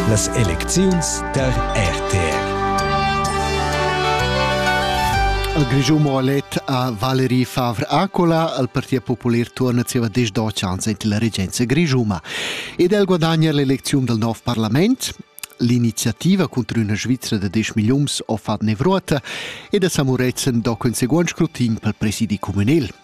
Las elecziuns der RTR. Al Grischun Moalet a Valerie Favre-Acola, al Partit Popular tuorna zieva desch do chans ent la regenza grischuma. Ed el guadagna l'elecziun del nov parlament, l'iniziativa contro una Svizzera da 10 millions ho fat nevruota ed a Samuretzen do conseguent scrutin pel presidi communal.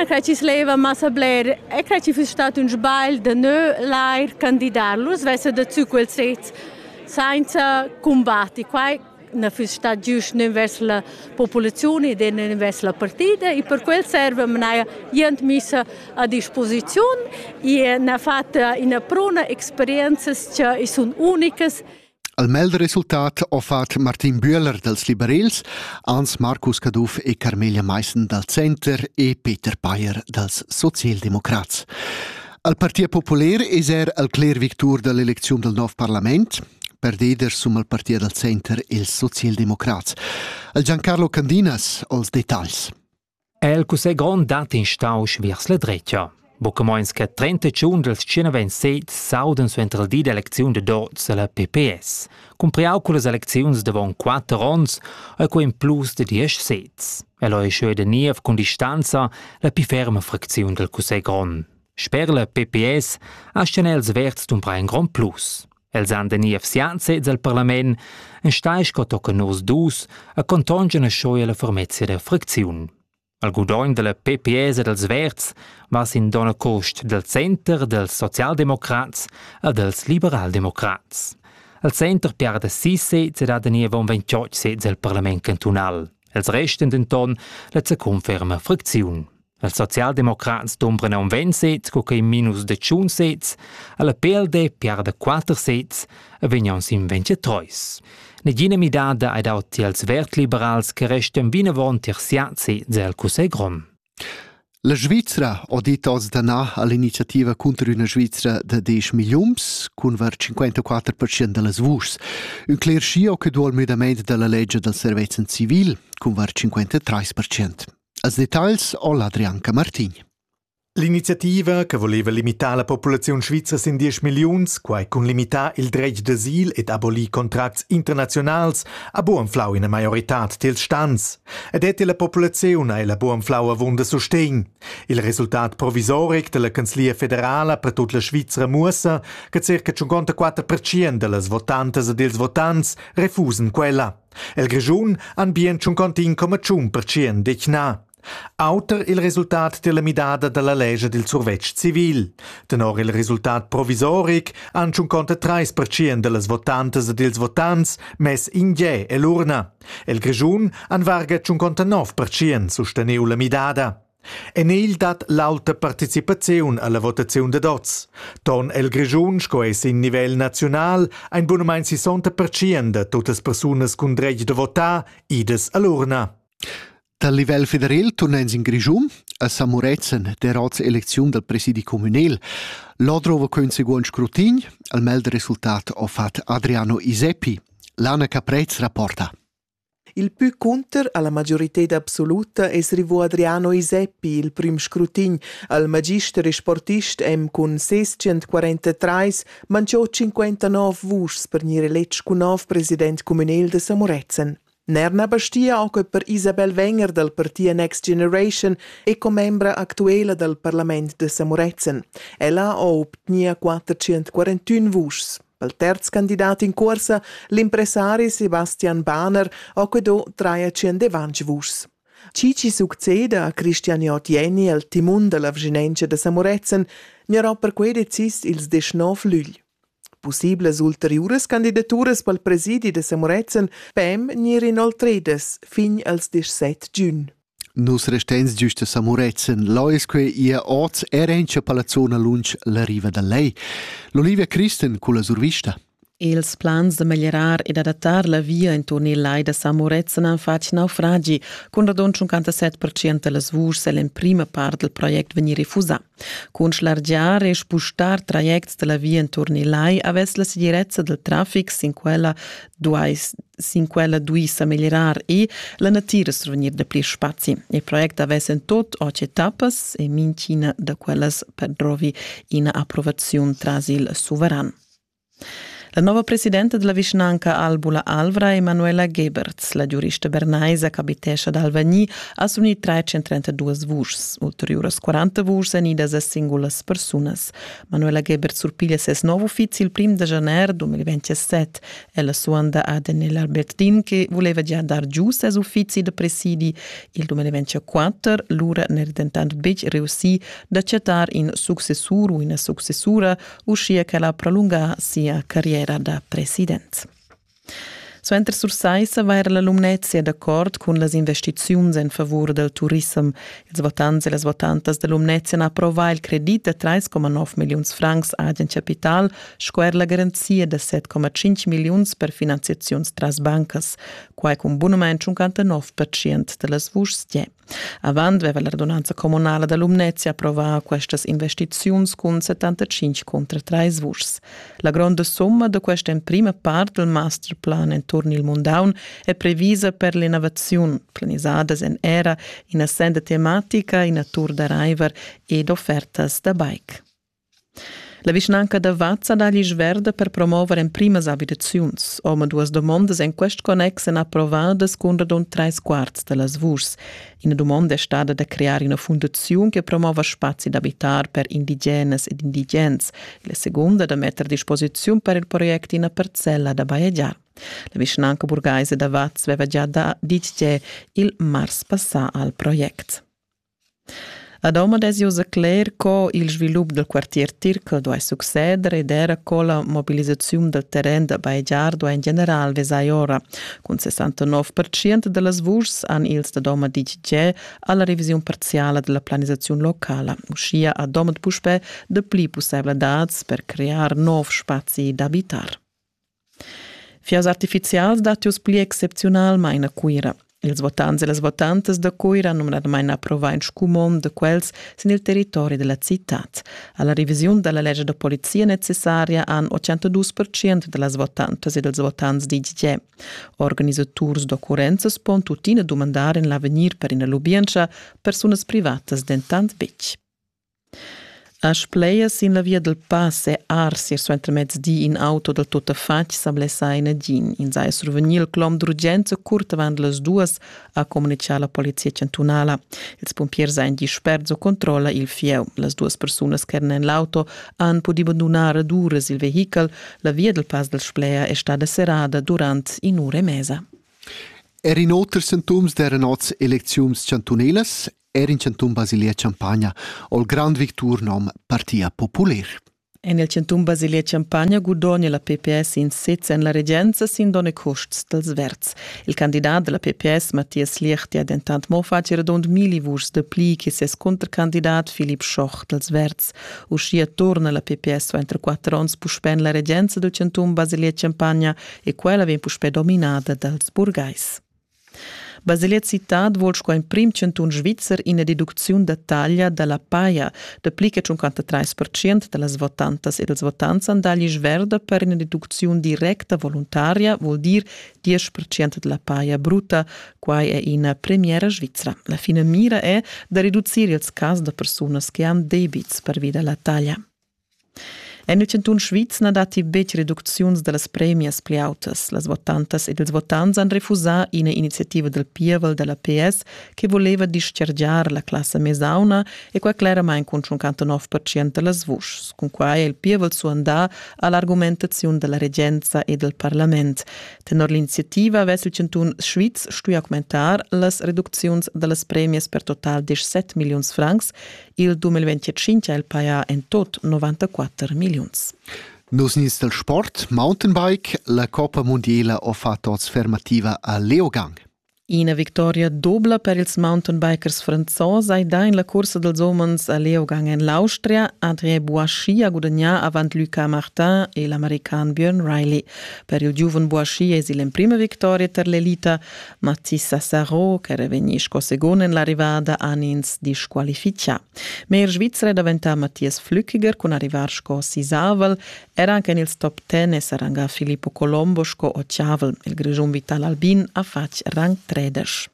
Na crai chi's leva massa bler e crai chi füss stat ün sbagl da nu l'eir candidar. Lur svessa da tü quels sezs sainza cumbatti. Quai na füss stat giüst nen vers la populaziun ed nen vers la partida e per quel serva manaja jent missa a disposiziun e n'ha fat ina pruna experienzas cha i sun unicas. Al melder resultat ho fat Martin Bühler dals liberels, Ans Marcus Caduff e Carmelia Maissen dal Center e Peter Payer dals Socialdemocrats. Al Partit Popular es er al cler victur da l'elecziun dal nov parlament, perdeder sum al Partit dal Center ils socialdemocrats. Al Giancarlo Candinas ho'ls detagls. è il cussegl grond dat instausch viers la dretga. Buca meins che 30 giun dels 127 s'auden suenter il di d'elecziun de Dotz alla PPS, cumpriau con las elecziuns davon 4 ons e co in plus de 10 sez. El è scheu de niev con distanza la più ferma fracziun del cussegl grond. Sper la PPS asten els verds dumbra in grond plus. Els han de niev sian sez al parlament, enstagl sco tochen nus dus, a contongen e schoi la fermezia der fricziun. Al gudogn della PPS e dels Verds va sin dona cost del Center dels Sozialdemokrats a dels Liberaldemokrats. Al Center piarda si sez ed ha de niev un ventioc sez al parlament cantunal. Els resten denton la conferma fricziun. Els socialdemocrats dumbran aunc ventg sez, co quei minus de tschun sez, alla PLD piarda quater sez e vegn aunc sin ventgetreus. Negina midada ei dau tiels vertliberals che restan vinavon tier siat sez el Cussegl grond. La Svizra ha dit oz danà all'iniziativa cunter una Svizra da 10 milliuns cun var 54% da las vuschs. Un cler scio che dual müdament da la legge dal servezen civil cun var 53%. Als detagls ho l'Adrian Camartin. L'iniziativa che voleva limitar la populaziun svizra sin 10 milliuns, quai cun limitar il dretg d'asil ed abolir contracts internaziunals, ha buanflau ina maioritad dels stans. Ed et la populaziun ha ella buanflau avunda sustegn. Il resultat provisoric della Canzlia federala per tut la Svizra muossa che circa 54% dellas votantas e dels votants refusen quella. El Grischun han bien tschuncontin coma tschun percient detgnà. Auter il resultat della midada dalla legia dil survetsch civil. Tenor il resultat provisoric han tschunconta treis percient dellas votantas ed ils votants mess in ge ell'urna. El Grischun han varga tschunconta nov percient susteniu la midada. En egl dat l'auta participaziun alla votaziun dad oz. Ton el Grischun sco ei sin nivel naziunal ein bunamein 60% da tuttas persunas cun dretg da votar idas all'urna. Dal livel federal turnens in Grischun a Samurezen der Ratselecziun dal presidi communal. Là drova quel seguond scrutin, al mel del resultat ho fat Adriano Iseppi. L'Anna Caprez rapporta. Il pü cunter alla majorited absoluta es rivò Adriano Iseppi, il prüm scrutin al magister e sportist M cun ses 143, manchò 59 vuschs per gnir eletg cun nov president cumünel da Samurezen. Ner na bastia oche per Isabel Wenger dal parti Next Generation e commembra actuela dal parlament da Samurezen. Ella ho obtgnia 441 vuschs. Al terz candidat in cuorsa, l'impressari Sebastian Bahner ha quedò trai a tschendevantg vuschs. Chi chi succeda a Christian Jottieni al timun da la vschinentscha da Samuretzen gnarà perquei decis ils deschnov lügl. Pussiblas ulteriuras candidaturas pel presidi da Samuretzen pem gnir inoltredas fin als 17 giun. Nus resteins giust a Samuretzen. Là es que ia oz er encha pa la zona lunsch la riva da Lei. L'Olivia Christen culla survista. Ils plans da meglierar ed adattar la via inturn il lai da Samuretzen han fatg naufragi. Cun radund 57% da las vuschs è l'emprima part del project vegnì refusà. Cun schlargiar e spustar trajects da la via enturn il lai avess la segirezza dal traffic sin quella duai sin quella duì sa meglierar e la natira survegnir da pli spazi. Il project avess en tot otg etappas e mintgina da quellas perdrovi ina approvaziun tras il suveran. La nova presidenta della vischnanca Albula Alvra, Emanuela Geberts, la giurista bernaisa ch'abitescha ad Alvagni, ha s'unì trais 132 vuschs. Ulteriuras 40 vuschs èn idas a singulas persunas. Manuela Geberts surpiglia ses nov uffizi il prim da janer 2027. Ella suanda ad Enel Albertin che voleva gia dar giu ses uffizi da presidi. Il 2024 lura n'era dentant betg reussì d'acceptar in successur u ina successura, uschia che la prolunga sia carriera da president. Suenter Sursaissa va era la Lumnezia d'acord cun las investiziuns en favur dal turissem. Ils votants e las votantas da Lumnezia han approvà il credit da 3,9 milliuns francs agen capital sco er la garanzia da 7,5 milliuns per finanziaziuns tras bancas. Quai cun bunament 59% da las vuschs Avant veva la radunanza communala da Lumnezia approvà questas investiziuns cun 75 contra 3 vuschs. La gronda summa da questa emprima part del masterplan enturn il Mundaun è previsa per l'innovaziun, planisadas en era ina senda tematica, ina tour da raiver ed offertas da bike. La vischnanca da Vaz ha dà l'isch verda per promover emprimas abitaziuns. Omaduas dumondas en quest connex èn approvadas cun radund trais quarts da las vuschs. Ina dumonda è stada da crear ina fundaziun che promova spazi d'abitar per indigenas ed indigens, la segunda da metter a disposiziun per il project ina parcella da bajegiar. La vischnanca burgaisa da Vaz aveva gia ditg il mars passà al project. A Domat es ius a cler co il svilup dal quartier Tirchel duai succeder ed era co la mobilisaziun dal terren da bajegiar duai in general vesair ora. Cun 69% da las vuschs han ils da Domat ditg tgè a la revisiun parziala da la planisaziun locala. Uschia ha Domat puspè dapli pussaivladads per crear nov spazi d'abitar. Fias artificials dattius pli excepziunalmain a Cuira. Ils votants e las votantas da Cuira numnadamain approvar in scumond da quels sin il territori della citad. Alla revisiun della legge da polizia necessaria han 82% da las votantas e dels votants ditg che organisaturs d'occurrenzas pon tuttina dumandar in l'avegnir per ina lubientscha, persunas privatas dentant betg. As splaya sin la via dal pass e ars ir suentermezdi in auto dal tuttafatg sa blessà in nagin. In saja survegnì il clom d'urgenza curt avant las duas, ha communitgà la polizia chantunala. Ils pumpiers han disperts o controlla il fieu. Las duas persunas che eran en l'auto han pudì bandunar ad uras il vehichel. La via dal pass dal Spleia è stada serrada durant in'ura e mesa. Er in oters sintoms d'eran oz elecziuns chantunalas Er in chantun Basilia Champagna ho il grand victur nom Partia Populer. En il chantun Basilia Champagna gudogna la PPS in sez en la regenza sin donn e custs dals verds. Il candidat della PPS Mathias Liechti ha dentant mo fatg redond milli vuschs de pli che ses contracandidat Philipp Schoch dals verds. Uschia torna la PPS va entro quatter onns puspè en la regenza del chantun Basilia Champagna e quella vegn puspè dominada dals burgais. Baselet Citad vuol sco emprim chantun svizzer ina deducziun da taglia da la paja da pli che 53% da las votantas e dals votants han dà l'isch verda per ina deducziun directa voluntaria, vuol dir 10% da la paja bruta. Quai è ina premiera svizra. La finamira è da reducir ils cas da persunas che han debits pervi da la taglia. En il chantun Sviz na datti betg reducziuns da las premias pli autas. Las votantas ed ils votants han refusà ina iniziativa dal pievel da la PS che voleva dischargiar la classa mesauna e quai cleramain cun 59% da las vuschs. Cunquai è il pievel suandà a l'argumentaziun da la regenza e dal parlament. Tenor l'iniziativa avess il chantun Sviz stuì augmentar las reducziuns da las premias per total 17 milliuns francs Il 2025 ha el pajà en tot 94 milliuns. Nus nins del sport, mountainbike, la Coppa Mondiela ho fatto oz fermativa a Leogang. Ina victoria dobla per ils mountainbikers franzos hai dà in la cursa dels homens a Leogang en l'Austria. André Boischi ha gudagnà avant Lucas Martin e l'american Björn Riley. Per il giuven Boischi es il emprima victoria per l'elita, Matthias Sarro, ch'era vegnì sco segund en l'arrivada, han ins disqualifichà. Ma er Svizra è daventà Matthias Flückiger cun arrivar sco sisavel. Era anche en ils top ten è s'arrangà Filippo Colombo sco ottavel. Il Grischun Vital Albin ha fatg rang 13.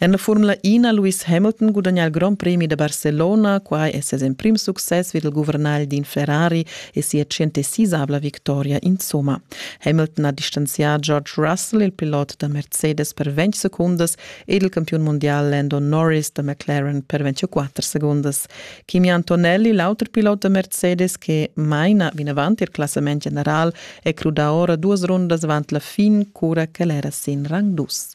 En la Formula 1 ha Lewis Hamilton gudagnà il Grand Premi da Barcellona. Quai è ses emprim success vid il guvernagl d'in Ferrari e sia centesisabla victoria insomma. Hamilton ha distanzià George Russell, il pilot da Mercedes, per 20 secundas ed il campiun mundial Lando Norris da McLaren per 24 secundas. Kimi Antonelli, l'auter pilot da Mercedes che maina vinavant il classament general, è crudà ora duas rundas avant la fin, cura ch'el era sin rang dus.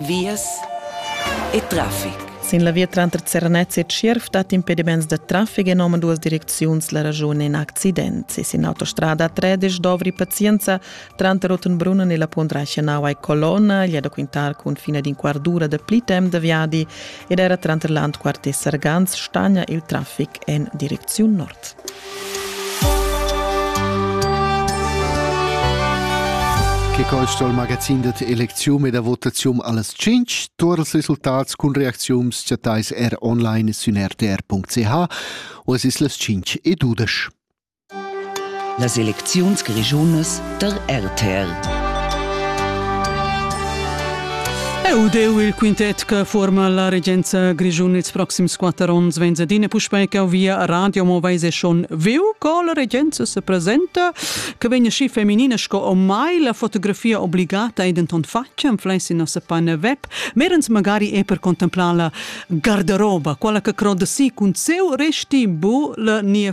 vias e traffic. Sin la via tranter Zernez e Tschierv dat impediments da traffic en omaduas direcziuns la raschun in accident. Se sin autostrada 13 dovri pazienza tranter Rottenbrunnen e la Pondreichenau ai Colonna, gli da quintar cun fine d'in quardura da pli temp da viadi ed era tranter Landquart e Sargans stagna il traffic en direcziun nord. Che col sto il magazin da elezium e da votazium alles 5 tur els resultats cun reacziums chattais er online sün rtr.ch o es es las 5 e 12. Las elecziuns grischunas der RTR. Eu deu il quintet che forma la regenza grischun ils proxims quatter ons vegns ed ine puspei ch'eu via a radio mo veis e schon viu co la regenza se presenta che vegn schi feminina sco ormai la fotografia obbligata ei denton fatga am fleis in nossa pagina web merens magari e per contemplar la garderoba quella che croda si cun seu resti bu la nia